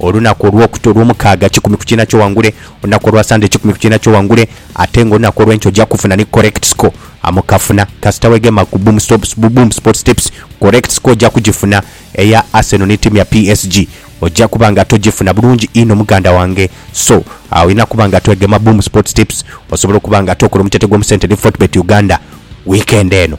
Olunaku olwokut olwomukaaga kikumi ku kiina kyoghangule, olunaku olwa Sunday kikumi ku kiina kyoghangule, ate nga olunaku olwenkya oja kufuna ni correct score amu kafuna kasita wegema ku Boom Stops bu Boom Sports Tips correct score oja kugifuna eya Arsenal ni tiimu ya PSG oja kuba nga togifuna bulungi inho muganda wange so olina kuba nga twegema Boom Sports Tips osobole okuba nga tokola omutyatye gwomu sente ni Fortbet Uganda weekend eno.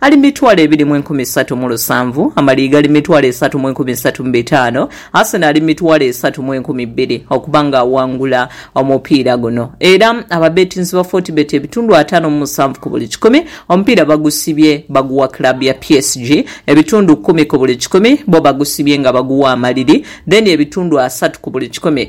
Ali mitwalo ebiri mu enkumi isatu mu lusanvu, Amaliiga ali mitwalo esatu mu enkumi isatu mu bitaano, Arsene ali mitwalo esatu mu enkumi bbiri okuba nga aghangula omupiira guno era ababetinzi ba Fortebet ebitundu ataano mu musanvu ku buli kikumi omupiira bagusibye baguwa club ya PSG, ebitundu kumi ku buli kikumi bo bagusibye nga baguwa Amaliri then ebitundu asatu ku buli kikumi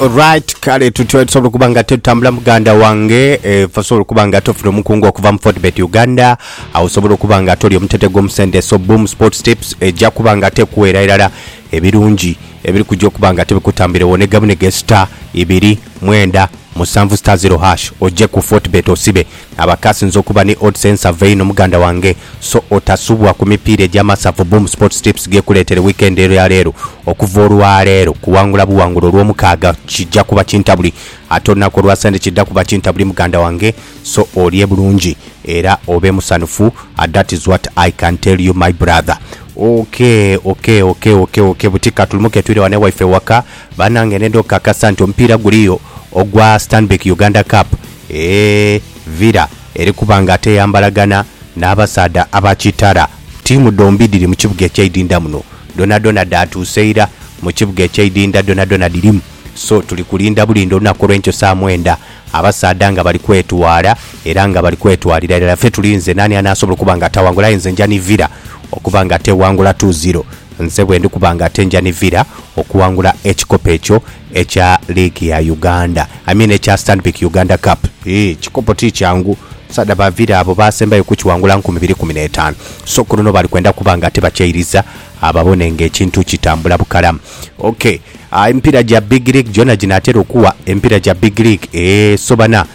Alright, kale tutyo tusobola okuba nga tetutambula muganda wange eh, fe osobola okuba nga tofuna omukungu okuva mu Fortbet Uganda awo osobola okuba nga toli omutete gw'omusente so Boom Sports Tips ejja kuba nga tekuweera irala ebirungi ebiri kujja okuba nga tebikutambirewo ne gamu ne ge star ibiri mwenda musanvu star zero hash ojje ku Fortbet osibe abakasinze okuba ni odds ensava eino muganda wange so otasubwa ku mipiira egy'amasavu Boom Sports Tips gekuleetere weekend ero ya leero Okuva olwaleero kuwangula buwangula olwomukaaga kija kuba kintabuli ate olunaku olwa sande kidha kuba kintabuli muganda wange so olye bulungi era obe musanhufu that is what I can tell you my brother. Ok ok ok ok ok buti katulumuke twire wano ewaife ewaka banange nenda okukakasa nti omupiira guliyo ogwa Stanbic Uganda Cup eeh Villa eri kuba nga ate eyambalagana n'abasaadha aba Kitara. Ttiimu dhombi dhiri mu kibuga ekyeidhindha muno. dhonadhona dhaatuuse ira mu kibuga eky'eidinda dhonadhona dhirimu. So tuli kulinda bulinda olunaku olw'enkyo saa mwenda, abasaadha nga bali kwetwala era nga bali kwetwalira irala. Ffe tulinze naani anaasobola okuba nga ataawangula, aye nze nja nivira okuba nga ateewangula two zero. Nze bwendi kuba nga ate nja nivira okuwangula ekikopo ekyo ekya liigi ya Uganda, I mean ekya Stanbic Uganda Cup. Yii, ekikopo ti kyangu. Saada baavira abo baasembayo kukiwangula nkumi biri kumi n'etaanu. So ku luno bali kwenda kuba nga tibakyairiza ababone ng'ekintu kitambula bukalamu. OK, emipiira gya Big League gyona ginaatera okuwa emipiira gya Big League? Ee. So bana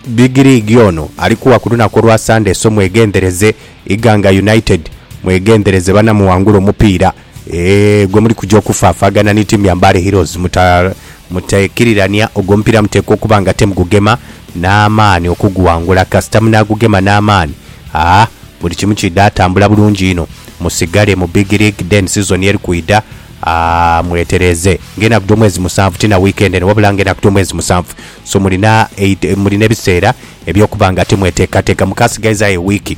Big League ono ali kuwa ku lunaku olwa Sande. So mweghendhereze. Iganga United mweghendhereze bana muwangule omupiira. Eeh gwe muli kuja okufaafagana ni tiimu ya Mbale Heroes mutekirirania ogwo omupiira muteekwa okuba nga ate mugugema n'amaani okuguwangula kasita munaagugema n'amaani aa buli kimu kiidha tambula bulungi inho musigale mu Big League then sizoni eri kwidha aa mwetereeze ng'enaku dh'omwezi musanvu ti na wiikendi eno wabula ng'enaku dh'omwezi musanvu so mulina mulina ebiseera eby'okuba nga ate mweteekateeka mukaasigaizaayo ewiiki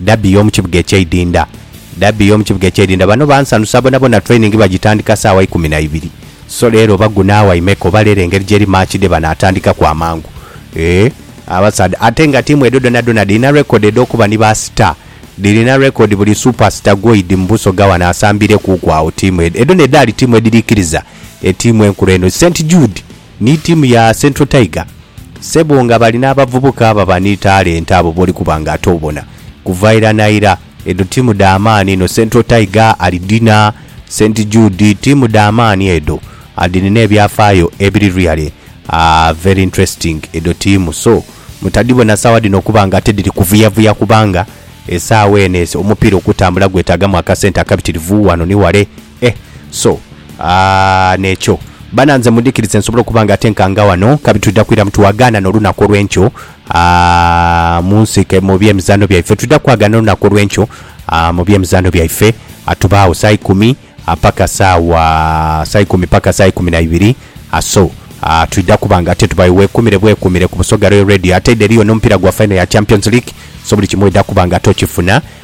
Derby y'omu kibuga eky'eidinda Derby y'omu kibuga eky'eidinda Bano bansanusa bonabona Training bagitandika saawa ikumi na ibiri So leero oba gunaawa imeka oba leero engeri gyeri Match day bano atandikaku amangu Eeh abasaadha Ate nga tiimu edho dhonadhona dhirina record edh'okuba ni ba star Dhirina record buli super star gwoidhi mu Busoga wano asambiirekuuku agho Tiimu edho edhona edhaali tiimu edhiriikiriza etiimu enkulu eno St Jude Ni ttiimu ya Central Tiger ssebo nga bali n'abavubuka ababa ni talenti abo b'oli kuba nga ate obona kuva ira na ira. Edho ttiimu dha maani inho. Central Tiger alidhina, St Jude, ttiimu dha maani edho. Adhirina ebyafaayo ebiri really very interesting edho ttiimu. So, mutadhibona sawa dhino okuba nga ate dhiri kuvuyavuya kubanga esaawa eno omupiira okutambula gwetaagamu akasente akabitirivu wano ni wale. Eh so aah nekyo bana nze mundhikirize nsobole okuba nga atenkaanga wano kabi twidha kwira mu twagaana no lunaku olwenkyo aah munsike mu bye mizaano byaife twidha kwagaana olunaku olwenkyo aah mu bye mizaano byaife atubaagho saa ikumi paka saawa saa ikumi paka saa ikumi na ibiri aah so aah twidha kuba nga ate tubayo wekumire bwekumire ku Busoga Royal Radio ate ere eriyo no mupira gwa final ya champions league so buli kimu oidha kuba nga ate okifuna